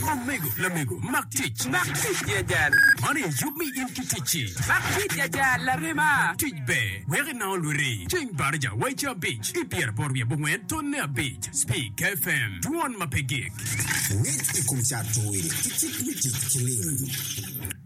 Omego, lamego, mak tic. Mak tic i ajal. Man aye yub mi in ki ticci. Mak tic i ajal, larema. Tic ber, wek inango lwiri. Ceng Barija, wa i ca abic, i pyeraboro wiye abongwen, tonne abic. Speak FM, dwon ma pe gik. Ngec i kom cato ki cik me tic ki lim.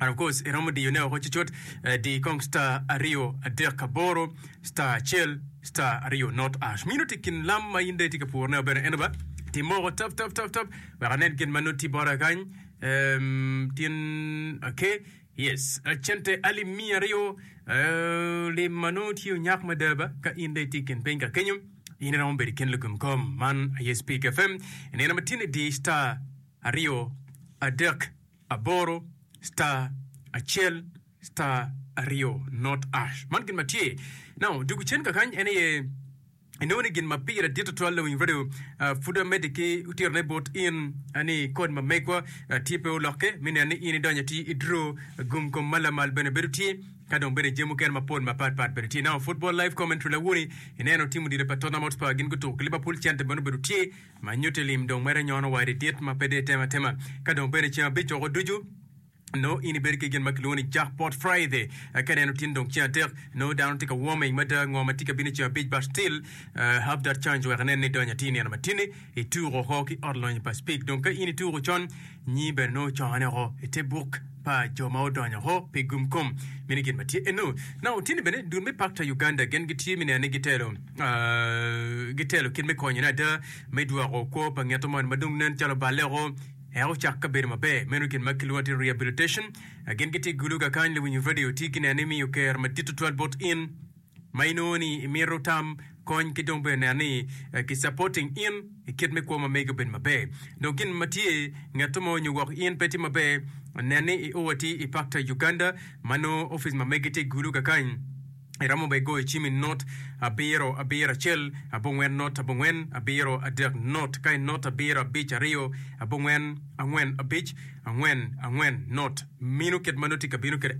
And of course iromo diyo ne woko cucut, eh, di kong star aryo adek aboro star acel star aryo not ash. Mino ti kin lam ma in dong itye ka puro ne bene eno ba ti moko tap tap tap tap wek anen gin ma nut ti bota kany. Em, tin okay. Yes, eh, cente alip miya aryo eh, lim ma nongo tye onyak mada ba ka in dong itye kin piny ka kenyo in iromo bedo kin lugum kom man aye Speak FM. Ineno ma tin idi star aryo adek aboro star acel star aryo not ash man gin ma tye now dwogo cen kakany en aye inongo ni gin ma pire dit tutwal lawiny radio ah, pud amedde ki otirone bot in ah, ni kod ma megwa ah, tye pe olokke me neno ni in idonyo ati i dro gum kom ma lamal bene bedo tye ka dong bene jami mukene mapol mapat pat bene tye now football live commentary lawoni ineno tim odilo pa Tottenham Hotspur gin gutuko ki Liverpool cente bene obedo tye Ma nyutti lim dong mere nyono wadi dit ma pe dee tem atema. Ka dong bene ceng abic oko ducu, nongo in ibedo ki gin ma kilwongo ni Jackpot Friday. Ka neno tini dong ceng adek, nongo dano tye ka warming mada ngo ma tye ka bino i ceng abic but still have that chance wek inen ni idonyo atir nino ma tini ituko oko ki ot lonyo pa Speke. Dong ka in ituko con, Nyi bene nongo ocongone woko i te buk pa jo ma odonyo woko pi gum kom. Mini gin ma tye eno. Na otini bene dul me pakta Uganda gen gitye mi neno ni gitelo gitelo kit me konyone ada me dwoko kwo pa ngeto man ma dong nen calo oballe woko eka ocak ka bedo maber. Meno gin ma kilwongo ni rehabilitation. Gen gitye gulu kakany luwinyo radio tye gineno ni miyo ker madit tutwal bot in. ma inongo ni imito tam kony ki dong bene neno ni ki supporting in i kit me kwo ma megi obed maber. Dong gin ma tye ngeto mo nyo woko in pe tye maber, nen ni i o atir i Pakta, Uganda, ma nongo ofice ma megi tye Gulu kakany. Iromo bene goyo cim i not abiro abiro acel abongwen not abongwen abiro adek not ka i not abiro abic aryo abongwen angwen abic angwen angwen not. Mino kit ma nongo tye ka bino kwede.